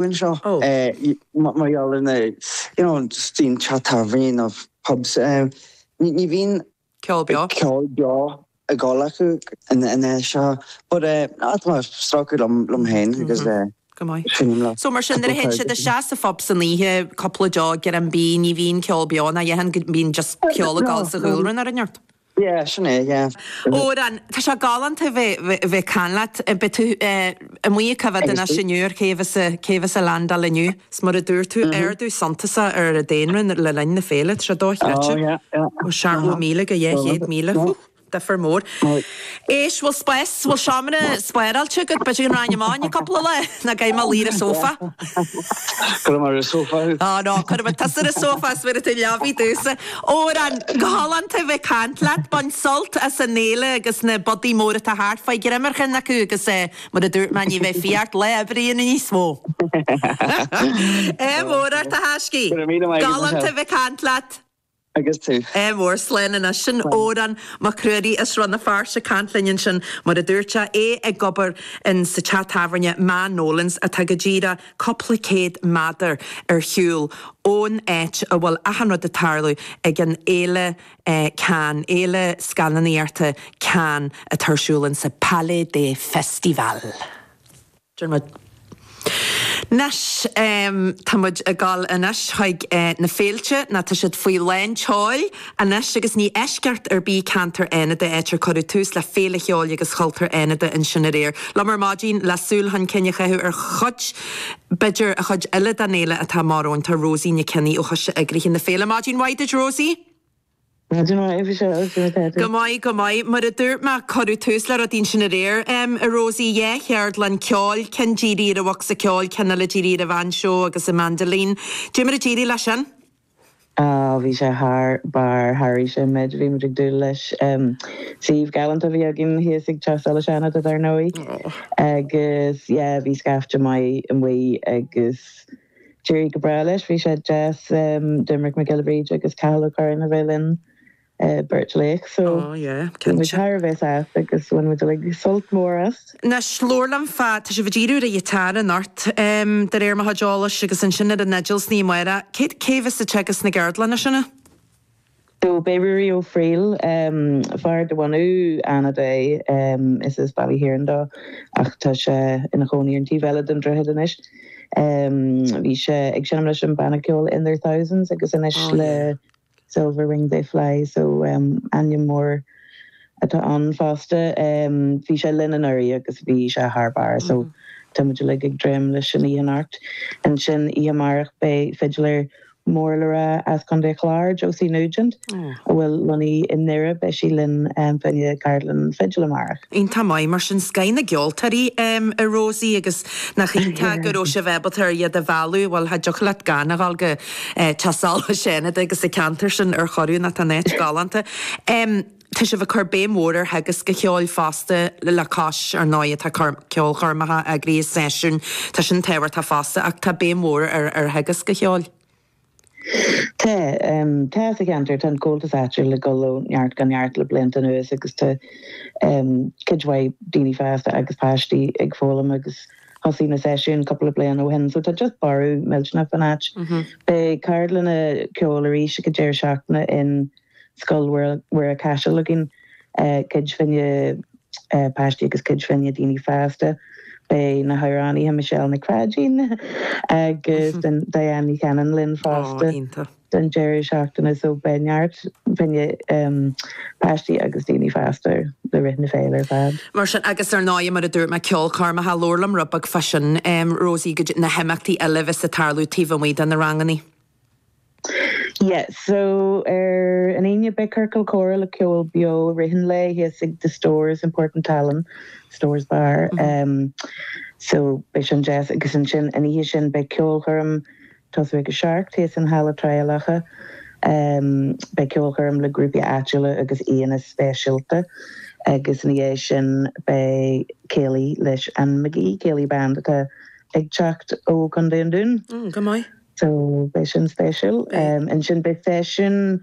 Bhain seo mar gheall ar na you know just bíonn teach tábhairne nó pubs ní bhíonn ceol beo ceol beo ag dul acu in in é seo but eh at mar stráice liom liom féin agus eh go maith sin lá so mar sin ar hen siad a sé sa phub san oíche cúpla deoch ar an bí ní bhíonn ceol beo ná a dhath ann bíonn just ceol ag dul sa gcúlra ar an neart Yeah, sin é, yeah. Odhrán, Tá sé galánta a bheith ag caint leat. Beidh tú amuigh ag coimhéad anois inniu ar cé a bheas ag landáil inniu. 'S mar a dúirt tú, ardú suntasach ar an daonra le linn na féile, tá sé dochreidte. Ó seachtó míle go dhá chéad míle, hú, difir mór. éist, bhfuil spás, bhfuil seomra spáráilte agat? B'fhéidir go rachainn amach ann cúpla lá. Nó an gcaithfidh mé luí ar an sófá. Cuirfidh mé ar an sófá thú. Oh no, cuirfidh mé tusa ar an sófá is bhéarfaidh tú an leabaidh domhsa. Odhrán, galánta a bheith ag caint leat. Bain sult as an fhéile agus na bodaigh mhóra atá thart. Faigh greim ar cheann acu agus eh, mar a dúirt mé, ní bheidh fiachadh ort lá oibre a dhéanamh níos mó. Ádh mór ort a thaiscidh. Go raibh míle maith agat. Galánta a bheith ag caint leat. agus tú. Ádh mór, Slán anois. Sin Odhrán Mac Ruairí as Rann na Feirste, ag caint linn ansin, mar a dúirt sé, é ag obair in sa teach tábhairne Ma Nolan's, atá go díreach cúpla céad méadar ar shiúl ón áit a bhfuil achan rud ag tarlú ag an fhéile Cannes, fhéile scannánaíochta Cannes, atá ar siúl in sa Palais des Festivals. Dermot. Anois, tá muid ag dul anois chuig na féilte, nó tá siad faoi lán tseoil anois, agus ní eisceacht ar bith ceantar Fhánada, áit ar cuireadh tús le Féile Cheoil agus Chultúir Fhánada ansin aréir. Liom ar maidin, le súil chun cinn a chaitheamh ar chuid, b'fhéidir, an chuid eile den fhéile atá amach romhainn, tá Rosie Nic Cionnaith ó Choiste Eagraithe na Féile. Maidin mhaith duit, Rosie! Go maith, go maith. Mar a dúirt mé, cuireadh tús le rudaí ansin aréir, em, a Rosie, dhá cheardlann ceoil, ceann dírithe ar an bhocsa ceoil, ceann eile dírithe ar an bhainseó agus an mandolin. Cad é mar a d'éirigh leis sin? Ah, bhí sé thar barr, thairis an méid a bhí muid ag dúil leis. Em, suíomh galánta a bhí againn thíos ag Teach Solais Fhánada, dar ndóigh. Agus, yeah, bhí scaifte maith amuigh agus. D'éirigh go breá leis, bhí sé deas Doimnic Mac Giolla Bhríde agus Cathal Ó Curráin a bheith linn, beirt laoch, so bhí muid thar a bheith sásta agus bhain muid uilig sult mór as. Anois, labhair liom fá, tá sibh ag díriú ar an ghiotár, anocht, de réir mo chuid eolais, agus ansin ar an fhidil ansin amárach, cé, cé bheas ag teagasc na gceardlanna sin? So beidh Ruairí Ó Frighil, fear de bhunadh Fhánada é, is as Baile Thiarn dó ach tá sé ina chónaí ar an taobh eile den droichead anois, bhí sé ag seinm leis an banna ceoil In Their Thousands agus anois le Silver Wing They Fly, so ainm mór atá ann fosta. Bhí sé linn anuraidh agus bhí sé thar barr so tá muid uilig ag dréim leis an oíche anocht. Ansin oíche amárach beidh fidléir mór le rá as Contae Chláir, Josie Nugent, a bhfuil lonnaithe i nDoire, beidh sí linn fá choinne ceardlann fidil amárach. Iontach maith mar sin, scoth na gceoltóirí, a Rosie, agus nach iontach go raibh sibh ábalta ar iad a mhealladh, bhuel cha dtiocfadh leat gan a dhul go Caiseal, go Fánaid agus an ceantar sin ar chor ar bith, nó tá an áit galánta. Tá sibh ag cur béim mhór ar theagasc an cheoil fosta, le cois, ar ndóigh, atá ceolchoirmeacha eagraithe, seisiúin, tá sin tábhachtach fosta, ach tá béim mhór ar theagasc an cheoil. Tá. Tá sa cheantar, tá an Comhaltas áitiúil ag dul ó neart go neart le blianta anuas agus tá cuid mhaith daoine fásta agus páistí ag foghlaim agus thosaigh na seisiúin cúpla bliain ó shin so tá just borradh millteanach fán áit. Beidh ceardlanna ceoil arís ag an deireadh seachtaine in Scoil Mhuire Caiseal againn, cuid fá choinne páistí agus cuid fá choinne daoine fásta. Beidh na hamhránaithe Michelle Nic Pháidín agus Diane Ní Chanainn linn fosta don deireadh seachtaine so beidh neart fá choinne páistí agus daoine fásta le rith na féile ar fad. Mar sin agus ar ndóigh mar a dúirt mé ceolchoirmeacha, labhair liom rud beag fá sin, Rosie, goidé na himeachtaí eile a bheas ag tarlú taobh amuigh de na ranganna. Yeah so ar an Aoine beidh Ciorcal Comhrá le ceol beo rith an lae thíos ag The Stores in Port an tSalainn, Stores Bar, em so beidh sin deas agus ansin an oíche sin beidh ceolchoirm ag tosú ag a seacht thíos in Halla Thrá Locha, em beidh ceolchoirm le grúpaí áitiúla agus aíonna speisialta agus ina dhiaidh sin beidh céilí leis an Magee Céilí Band atá ag teacht ó Chontae an Dúin. Mm go maith. So, beidh sin spéisiúil. Ansin beidh seisiún,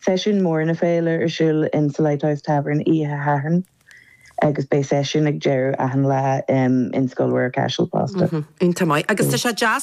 seisiún mór na féile ar siúl in sa Lighthouse Tavern oíche Shathairn agus beidh seisiún ag deireadh achan lá in Scoil Mhuire Caiseal fosta. Iontach maith. Agus tá sé deas